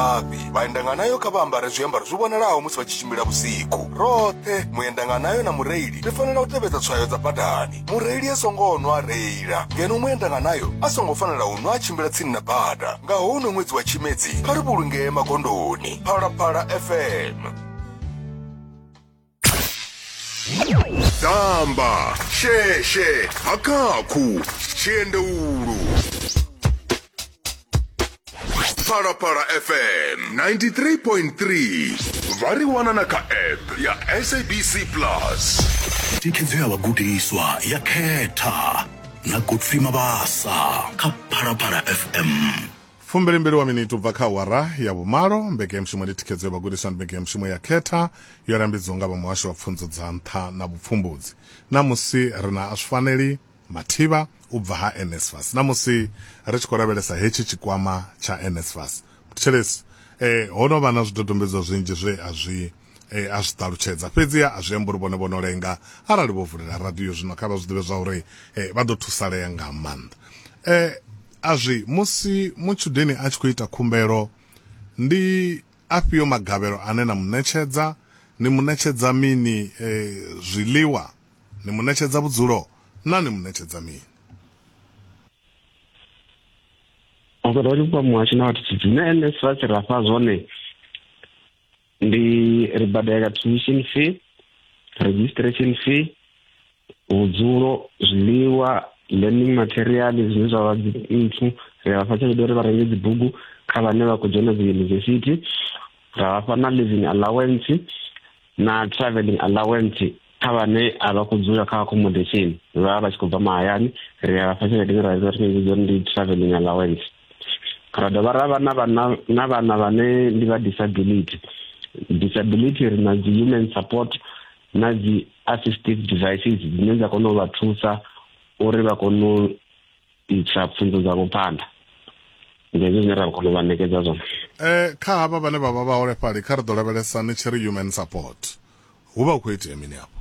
mafhi. Vhaendanganayo kha vha ambare zwiambaro zwi vhonalaho musi vha tshi tshimbila vhusiku. Roṱhe, muendanganayo na mureili ri fanela u tevhedza tswayo dza badani. Mureili a songo nwa a reila, ngeno muendanganayo a songo fanela u nwa a tshimbila tsini na bada. Nga houno ṅwedzi wa Tshimedzi, kha ri vhulungee magondoni. Phalaphala FM. damba sheshe hakakhu tshiendeulu phalaphala fm 93.3 vha ri wana na kha app ya sabc plus thikhedzo ya vhagudiswa ya khetha na godfrey mabasa kha phalaphala fm Fumbili mbili wa miniti u bva kha awara ya vhumalo. Mbekanyamushumo ndi thikhedzo ya vhagudiswa ndi mbekanyamushumo ya Khetha yo lambedziwa nga vha Muhasho wa Pfunzo dza Nṱha na Vhupfumbudzi. Ṋamusi ri na Aswifaneli Mathiba u bva ha NSFAS. Ṋamusi ri tshi khou lavhelesa hetshi tshikwama tsha NSFAS, Mthetshelesi e, ho no vha na zwidodombedzwa zwinzhi zwe a zwi e, a zwi ṱalutshedza. Fhedziha a zwi ambi uri vhone vho no lenga. Arali vho vulela radio zwino, kha vha zwi ḓivhe zwauri e, vha ḓo thusalea nga maanḓa. E, A zwi, musi mutshudeni a tshi khou ita khumbelo, ndi afhio magavhelo ane na mu ṋetshedza? Ni mu ṋetshedza mini? E, zwiḽiwa. Ni mu ṋetshedza vhudzulo? Naa ni mu ṋetshedza mini? Vhaḓorobani vhupo ha Muhasho na Vhathu Tshidzi, na NSFAS, ra fha zwone. ndi ri badela tuition fee registration fee vhudzulo zwiḽiwa learning material zwine zwa vha nthu ri a vhafha tshelede uri vha renge dzibugu kha vhane vha khou dzhena dzi yunivesithi ra vhafha na living allowance na traveling allowance kha vhane a vha khou dzula kha accommodation vha vha tshi khou bva mahayani ri a vhafha tshelede ine ra vhidza ri tshi uri ndi traveling allowance ra dovha ra vha na vhana na vhana vhane ndi vha disability disability ri na dzi human support na dzi assistive devices dzine dza kona u vha thusa uri vha kone u isa pfunzo dzavho phanḓa ndi hezwo zwine ra kona u vha ṋekedza zwone um kha havha vhane vha vha vhaholefhali kha ri ḓo lavhelesa ni tshi ri human support hu vha hu khou itea mini afho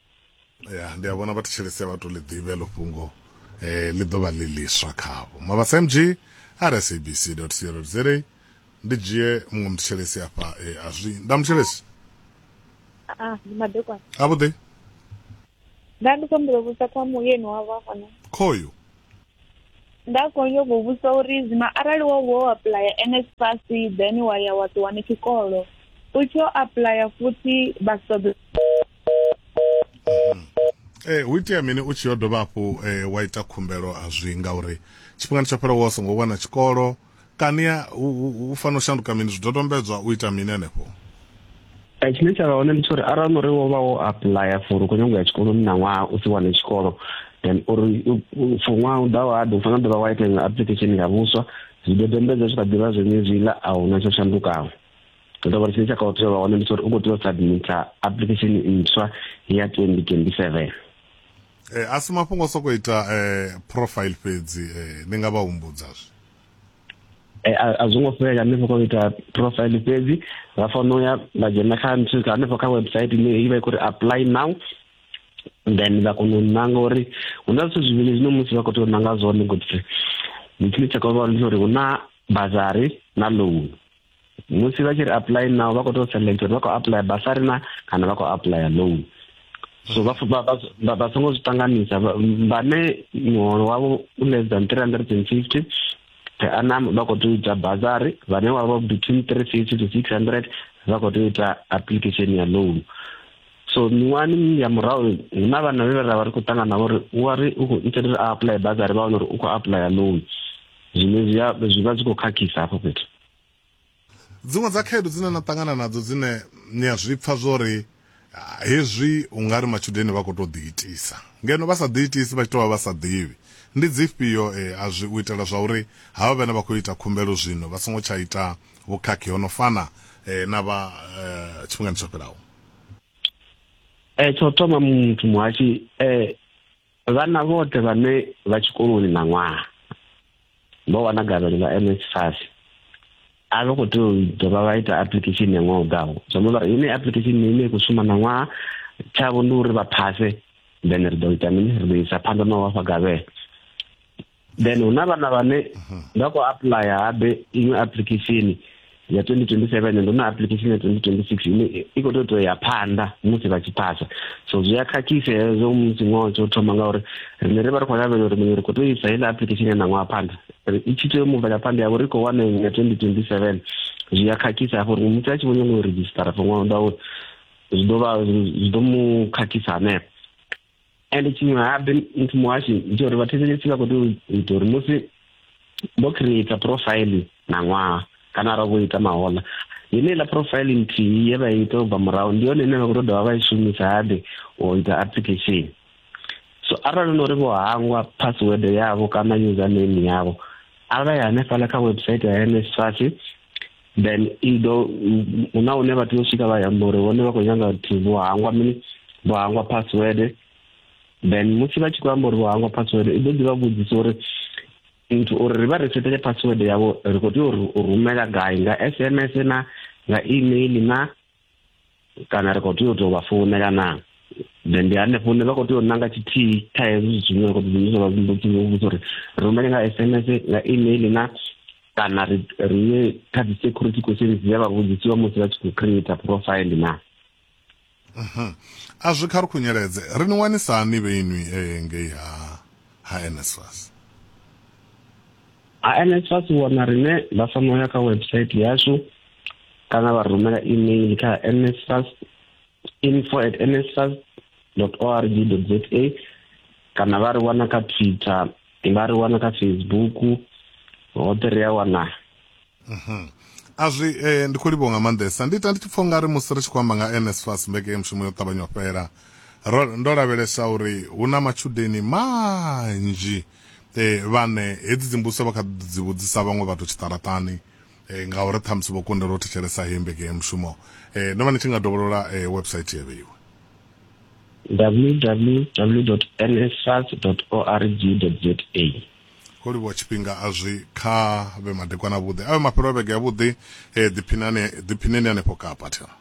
ya ndi a vhona vha thetshelesi vha to ḽi ḓivhe ḽo fhungo um ḽi ḓo vha ḽi ḽiswa khavho mabasa mg rsabc co za ndi dzhie muṅwe muthetshelesi afha um a zwi nda muthetshelesi Ah, ndi madekwana. a vhuḓi Nda ndi khou humbela u vhudzisa kha muyeni wa vha hone. khoyu Nda khou nyanga u vhudzisa uri zwino arali wo wo apuḽaya NSFAS then wa ya wa ṱuwa ni tshikolo. U tshi yo apuḽaya futhi vha si ṱoḓe eh hu itea mini u tshi yo dovha hafhu eh, wa ita khumbelo a zwi ngauri tshifhingani tsho fhelaho wa songo wana tshikolo kani ya u- u u fanela u shanduka mini zwidodombedzwa u ita mini henefho Eh, tshine tsha vha hone ndi tsha uri arali no ri wo vha wo apuḽaya for u khou nyanga u ya tshikoloni na ṅwaha u si wane tshikolo then uri u- u- for ṅwaha u ḓaho hade u fanela dovha wa ita iṅwe application ya vhuswa zwidodombedzwa zwi kha ḓivha zwenezwiḽa a huna tsho shandukaho ndo vha tshine tsha kha tea vha wana ndi tsori u khou tea u submita application ntswa ya 2027 eh a si mafhungo soko ita eh profile fhedzi eh ni nga vha humbudza zwi eh a zwo ngo fhela ni soko ita profile fhedzi vha fono ya vha dzhena kha nthu ka hanefho kha website ine i vha i khou ri apply now then vha kona u nanga uri hu na zwithu zwivhili zwine musi vha khou tea u nanga zwone ngoti ndi tshine tsha kho vha uri hu na bazari na loan musi vha tshi ri apply now vha khou tou select uri vha khou apply basari na kana vha khou apply loan so vha vha songo zwi ṱanganisa vhane muholo wavho u less than three hundred and fifty per annum vha khou tou ita basari vhane wa vha between three fifty to six hundred vha khou tou ita application ya loan so miṅwahani ya murahu hu na vhana vhe ra vha ri khou ṱangana navho uri u wa ri u khou itela uri a apply basari vha wana uri u khou apply loan zwine zwi vha zwi khou khakhisa hafho fhethu Dziṅwe dza khaedu dzine na ṱangana nadzo dzine ni a zwi pfa zwo ri hezwi u nga ri matshudeni vha khou tou ḓiitisa ngeno vha sa ḓiitisi vha tshi tou vha vha sa ḓivhi, ndi dzifhio a zwi u itela zwa uri havha vhane vha khou ita khumbelo zwino vha songo tsha ita vhukhakhi ho no fana na vha tshifhingani tsho fhelaho? Tsha u thoma muthu muhashi. Vhana vhoṱhe vhane vha tshikoloni ṋaṅwaha vho wana gavhelo ḽa NSFAS a vha khou tea u dovha vha ita application ya ṅwaha u ḓaho zwi amba uri ine application ine i khou shuma ṋaṅwaha tshavho ndi uri vha phase then ri ḓo ita mini ri ḓo isa phanḓa na u vhafha gavhelo then hu na vhana vhane mhm. nga khou apuḽaya habe iṅwe application ya 2027 ndo na application ya 2026 ine i khou tou ya phanḓa musi vha tshi phasa so zwi a khakhisa hezwo musi ṅwaha tsho thoma ngauri riṋe ri vha ri khou lavhelela uri muṅwe ri khou tou isa heiḽa application ya ṋaṅwaha phanḓa i tshi tea u mubvela phanḓa yavho ri khou wana iṅwe ya 2027 zwi a khakhisa hafho uri musi a tshi vho nyanga u redzhisitara for ṅwaha u ḓa uri zwi ḓo vha zwi ḓo mu khakhisa hanefho and tshiṅwe habe muthu muhashi ndi uri vhathetshelesi vha khou tea u ita uri musi vho creata profile na ṅwaha kana ara vho ita mahola yeneiḽa profile nthihi ye vha ita u bva murahu ndi yone ine vha khou to dovha vha i shumisa habe u ita application so arali no uri vho hangwa password yavho kana username yavho arali hanefhaḽa kha website ya NSFAS then i ḓo huna hune vha tea u swika vha yamba uri vhone vha khou nyanga vhathu vho hangwa mini vho hangwa password then musi vha tshi khou amba uri vho hangwa password i ḓo ḓi vha vhudzisa uri nthu uri ri vha ri setele password yavho ri khou tea u rumela gai nga sms na nga email na kana ri khou tea u tou vha founela naa then ndi hanefho hune vha khou tea u nanga tshithihi kha hezwi zwithu zwine vha khou ḓidzhenisa vha vhudzisa uri rumele nga s m s nga email na kana ri ri ye kha dzi security questions dzi vha vhudzisiwa musi vha tshi khou creator profile na mhm. a zwi kha ri khunyeledze ri ni wanisa hani vhe inwi e ngei ha ha nsfas ha nsfas wana rine vha fanela ya kha website yashu kana vha rumela email kha nsfas info at nsfas org za kana vha ri wana kha twitter vha ri wana kha facebook hoṱhe ri a wana mhm. a zwi eh, ndi khou livho nga maanḓesa ndi ita ndi tshi pfha ungari musi ri tshi khou amba nga nsfas mbeke ya mushumo yo ṱavhanya u fhela ndo lavhelesa uri hu na matshudeni manzhi um vhane hedzi dzimbuso vha kha dzi vhudzisa vhaṅwe vhathu tshiṱaratani e, ngauri ṱhamusi vho kundelwa u thetshelesa heyi mbege ya mushumo e, no vha ni tshi nga dovholola e, website ya vheiwe www nsfas org za ho livhuwa tshifhinga a zwi kha vhe madekwana avhuḓi a vhe mafhelo a vhege yavhuḓi um ḓiphinani ḓiphineni hanefho kapa thera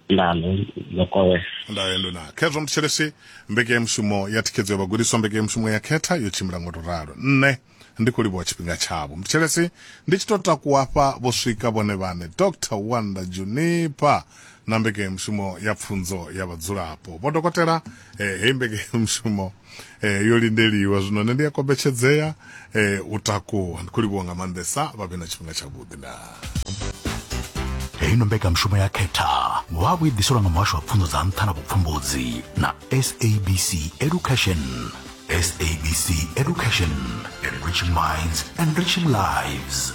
nano lokowe ndaendo na khezwo muthetshelesi mbekeyamushumo ya thikhedzo ya vhagudiswa mbekeyamushumo ya khetha yo tshimbila ngo to ralo nṋe ndi khou livhuwa tshifhinga tshavho muthetshelesi ndi tshi to takuwa hafha vho swika vhone vhane dr wanda junipa na mbekeyamushumo ya pfunzo ya vhadzulapo vho dokotela eh, heyi mbekeyamushumo eh, yo lindeliwa zwino nṋe ndi a kombetshedzea eh, u takuwa ndi khou livhuwa nga maanḓesa vha vhe na tshifhinga tshavhuḓi na heino mbekanyamushumo ya khetha wa vhu i ḓiselwa nga muhasho wa pfunzo dza nṱha na vhupfumbudzi na sabc education sabc education enriching minds enriching lives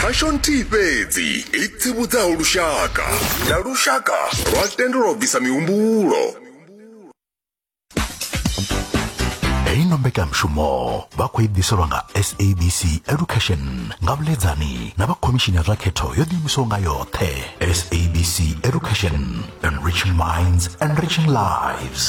khasho nthihi fhedzi i tsivhudzaho lushaka na lushaka lwa tendelwa u bvisa mihumbulo heyi no mbekanyamushumo vha khou i ḓiselwa nga sabc education nga vhuḽedzani na vha khomishini ya zwa khetho yo ḓiimisaho nga yoṱhe sabc education enriching minds enriching lives